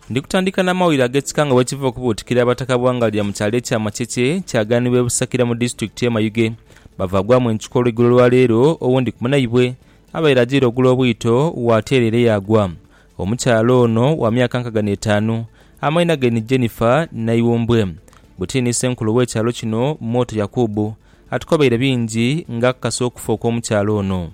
Ndi kutandika na mawulire ag'ekika nga bwekiva okubuutikira abataka Bwangalya mu kyalo ekya Makyekye kyaganibwa e Busakira mu disitulikiti ye Mayuge bavagwamu encuka olweigulo lwa leero owundi ku munaibwe abaire ajaire ogula obwito wateera ere yaagwa. Omukyala ono wa myaka nkaga n'etaanu amaina ge ni Jennifer Naiwumbwe. Buti ni senkulu w'ekyalo kino Mwoto Yakubu atukobeire bingi nga akakasa okufa okw'omukyala ono.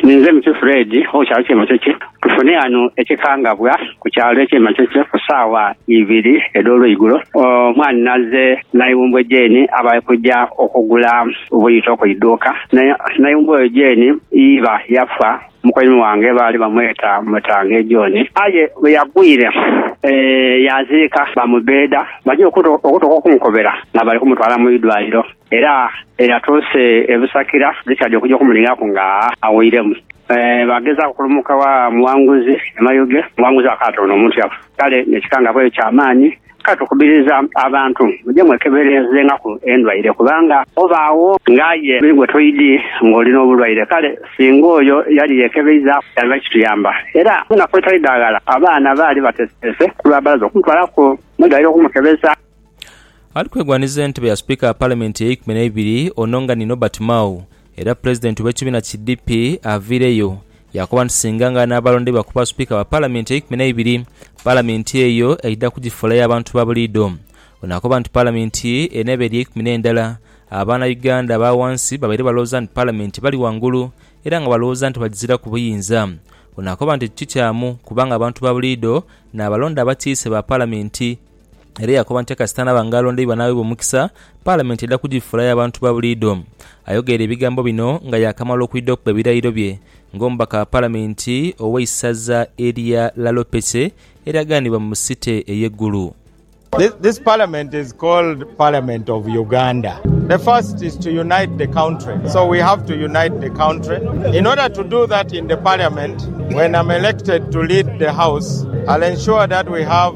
Ninze muti Fred owe kyalo kye Makekye. Tufune ghano ekikangabwa ku kyalo ekye Makekye ku saawa ibiri edholweigulo. Omwani naze naiwumbwe Jane aba alikuja okugula buyito ku iduuka. Naiwumbwe oyo Jane iba yafa mukoimi wange baali bamweta Mutange John. Aye bweyagwire yaziika bamubeda baja okutuka okumukobera nga bali kumutwala mu idwaliro. Era eyatuuse e Busakira Richard okuja okumunighaku nga awoiremu. Baagezaaku okulumuka wa Muwanguzi e Mayuge, Muwanguzi akaata ono omuntu yafa. Kale n'ekikangabwa kya maani. Kale tukubiriza abantu muje mwekeberezenghaku endwaire, kubanga obaagho ng'aye ni gwe toidhi ng'oli n'obulwaire. Kale singa oyo yali yeekebeizaaku yandiba kituyamba. Era mu naku edhitali dha ghala abaana baali bateeseteese ku lwa balaza okumutwalaku mu idwaliro okumukebeza. Ali kwegwanhiza entebe ya Sipiika ya Palamenti eyeikumi neibiri ono nga ni Norbert Mao era Pulezidenti w'ekibiina ki DP aviireyo yaakoba nti singa nga anaabalondeibwa kuba Sipiika wa Palamenti eyeikumi neibiri, Palamenti eyo aidha kugifuula ya bantu ba buliidho. Ono akoba nti Palamenti eneeba eri eikumi n'endala aba na Uganda aba ghansi babaire balowooza nti Palamenti ebali ghangulu era nga balowooza nti bagiziraku buyinza. Ono akoba nti ekyo tikyamu kubanga abantu ba buliidho n'abalonda abatiise ba Palamenti. era yakoba nti kasita anaaba nga alondeibwa n'aweebwa omukisa, Palamenti eidha kugifuula ya bantu ba buliidho. Ayogeire ebigambo bino nga yaakamala okwidha okuba ebirayiro bye ng'omubaka wa Palamenti ow'eisaza erya Lalopece eryaganibwa mu City ey'e Gulu. This parliament is called parliament of Uganda the first is to unite the country so we have to unite the country in order to do that in the parliament when am elected to lead the house I'll ensure that we have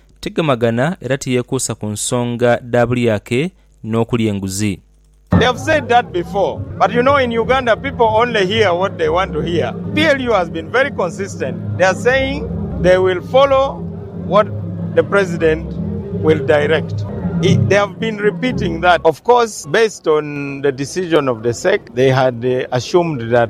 Tigemagana era tiyekuusa ku nsonga dha bulyake n'okulya enguzi.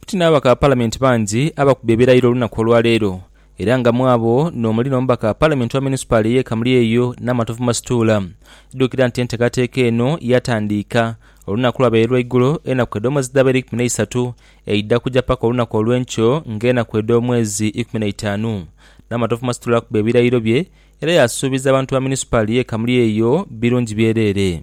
Buti n'ababaka ba Palamenti bangi abakubye ebirayiro olunaku olwaleero era nga mwabo n'omuli n'omubaka wa Palamenti owa Munisipali ey'e Kamulyeyo Namatovu Masituula. Idhukira nti enteekateeka eno yatandiika olunaku lwabaire lwaigulo enaku edh'omwezi dhabaire ikumi n'eisatu eidha kuja paka olunaku olw'enkyo ng'enaku edh'omwezi ikumi n'eitaanu. Namatovu Masituula akubye ebirayiro bye era yasuubiza abantu ba Munisipali y'e Kamulyeyo birungi byereere.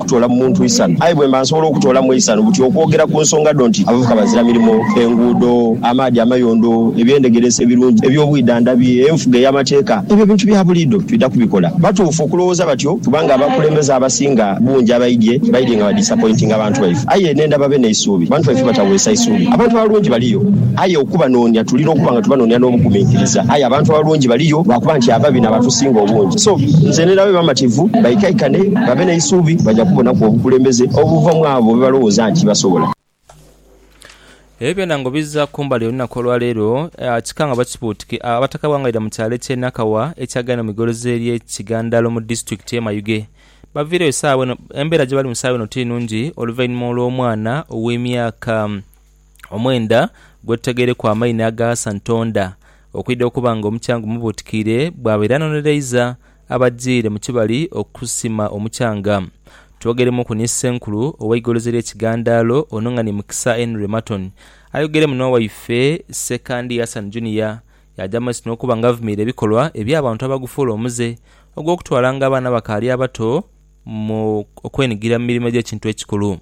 kutoola mu muntu isanu, aye bwe mba nsobola okutoola mu eisanu buti okwogera ku nsonga dho nti abavuka bazira mirimo, enguudo, amaadhi amayondo, ebyendhegeresa ebirungi, eby'obwidhandhabi, enfuga ey'amateeka, ebyo bintu bya buliidho twidha kubikola. Batuufu okulowooza batyo kubanga abakulembeze abasinga bungi abaidhye, baidhye nga badisapointinga bantu baife. Aye n'endha babe n'eisuubi. Abantu baife bataweesa isuubi. Abantu abalungi baliyo, aye okubanoonia tulina okuba nga tubanoonia n'obuguminkiriza. Aye abantu abalungi baliyo lwakuba nti ababi n'abatusinga obungi. So, nze n'endha babe bamativu baikaikane. babe n'eisuubi baja kubonaku obukulembeze obuva mu abo be balowooza nti basobola. Ebyo byona nga obiza kumbali olunaku olwaleero kika nga bakibuutiki Abataka b'Wangaira mu kyalo eky'e Nakawa ekyagenda mu igolozi ery'e Kigandalo mu disitulikiti y'e Mayuge baviireyo saagha eno Embeera gyebalimu saagha eno ti nnungi oluvainhuma olw'omwana ow'emyaka omwenda gwetutageireku amaini agaghasa Ntonda okwidha okuba nga omukyanga omubuutikiire bwaba era anonereiza abadhire mu kibali okusima omukyanga. Twogeiremuku ni Ssenkulu ow'eigolozi ly'e Kigandaalo Onong'ani Mukisa Henry Marton ayogeire muno waife Ssekandi Hassan Junior yaaja mu maiso n'okuba nga avumiira ebikolwa eby'abantu abagufuula omuze ogw'okutwalanga abaana abakaali abato mu okwenigira mu mirimo egy'ekintu ekikulu.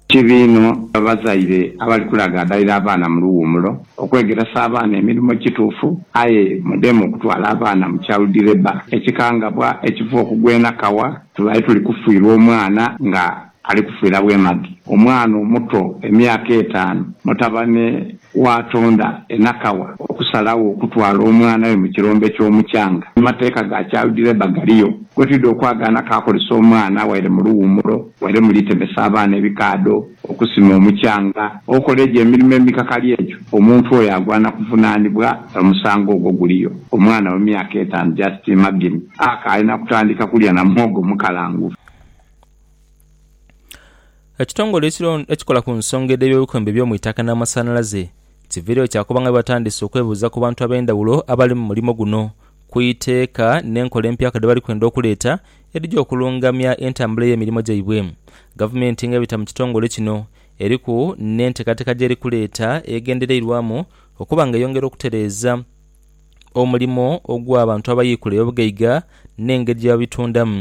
Kibi inho abazaire abali kulagadhalira abaana mu luwumulo okwegeresa abaana emirimo ekituufu aye mudemu okutwala abaana mu child labour, ekikangabwa ekiva okugwa enakawa tubaire tuli kufiirwa omwana nga ali kufiira bwemage. Omwana omuto emyaka etaanu mutabane Waatonda enhakawa okusalagho okutwala omwana we mu kirombe ky'omukyanga. Amateeka ga childlabour galiyo. Gwe twidha okwagaana kaakolese omwana waire mu luwumulo, waire mu litemesa abaana ebikaadho, okusima omukyanga, okola egyo emirimo emikakali egyo, omuntu oyo agwana kuvunaanibwa omusango ogwo. Guliyo. Omwana we myaka etaanu, just imagine, akaali na kutandika kulya na muhogo mukalangufu. Ekitongole ekiron ekikola ku nsonga edh'eby'obukwembe eby'omu itaka n'amasanhalaze kiviireyo kyakoba nga bwe batandise okwebuuza ku bantu ab'endhawulo abali mu mulimo guno ku iteeka n'enkola empyaka dhe bali kwenda okuleeta edhija okulungamya entambula y'emirimo gyaibwe. Gavumenti nga ebita mu kitongole kino eriku n'enteekateeka gy'eri kuleeta egendereirwamu okuba nga eyongera okutereeza omulimo ogw'abantu abayiikula eby'obugaiga n'engeri gye babitundamu.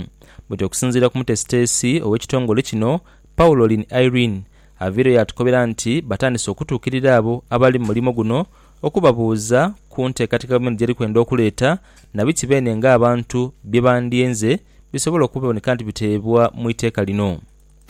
Buti okusinziira ku mutesiteesi ow'ekitongole kino, Paulolin Irene, aviireyo yatukobera nti batandise okutuukirira abo abali mu mulimo guno okubabuuza ku nteekateeka gavumenti gy'eri kwenda okuleeta na biki beene ng'abantu bye bandiyenze bisobole okuboneka nti biteebwa mu iteeka lino.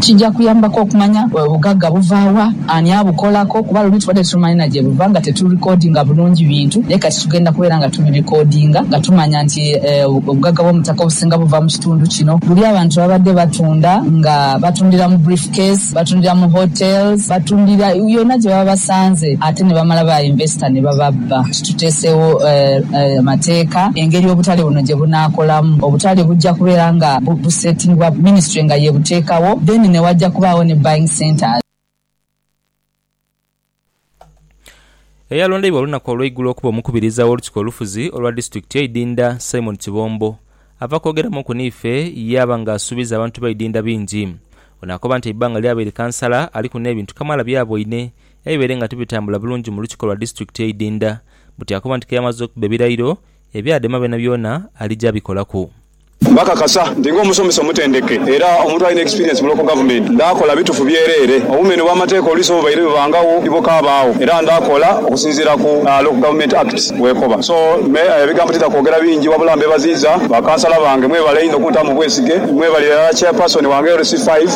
Kija kuyambaku okumanya obugagga buva wa, ani abukolaku kuba luli tubadde tetumanyi na gye buva nga tetulikodinga bulungi bintu naye kati tugenda kubeera nga tubirikodinga nga tumanya nti obugagga bw'omu ttaka obusinga buva mu kitundu kino. Luli abantu babadde batunda nga batundira mu brief case, batundira mu hotels, batundira yona gye baba basanze ate ne bamala ba yinvesita ne bababba. Tuteesegho amateeka engeri obutale buno gye bunaakolamu. Obutale bujja kubeera nga buseetingibwa minisitule nga y'ebuteekagho then ne wajja kubaagho ni buying centres. Eyalondeibwa olunaku olweigulo okuba omukubiriza w'olukiiko olufuzi olwa disitulikiti ye Idinda Simon Kibombo ava kwogeramuuku niife yaaba nga asuubiza abantu ba Idinda bingi. Ono akoba nti eibbanga lyabaire kansala aliku n'ebintu kamaala byaboine ebibaire nga tibitambula bulungi mu lukiko lwa disitulikiti e Idinda buti akoba nti keyamaze okuba ebirayiro ebya dema byonabyona alija abikolaku. Bakakasa nti ng'omusomesa omutendeke era omuntu alina experience mu local government, ndaakola bitufu byereere. Obumenhe bw'amateeka oluusi obubaire bubangagho tibukaabagho era ndaakola okusinziira ku Local Government Act bwekoba. So me ebigambo tidha kwogera bingi wabula mbebaziiza ba kansala bange mwebale inho okuntamu obwesige. Mwebale irala Chairperson wange LC5.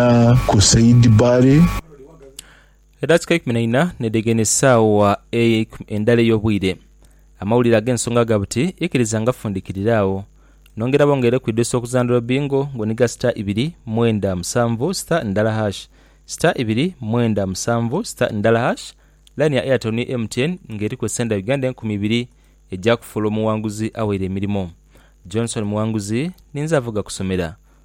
Ghona ku Seidi Baale. Edhakiika eikumi na ina n'edhegana esaawa endala ey'obwire, amawulire ag'ensonga ga buti ikiriza nga fundikirira agho. Nongera bongere ku idweso okuzandhula bingo nga oniga star ibiri mwenda musanvu star ndala hash, star ibiri mwenda musanvu star ndala hash. Line ya Airtel ni MTN nga eriku esente dha Uganda enkumi ibiri eja kufuula omuwanguzi awaire emirimo. Johnson Muwanguzi ninze avoga kusomera.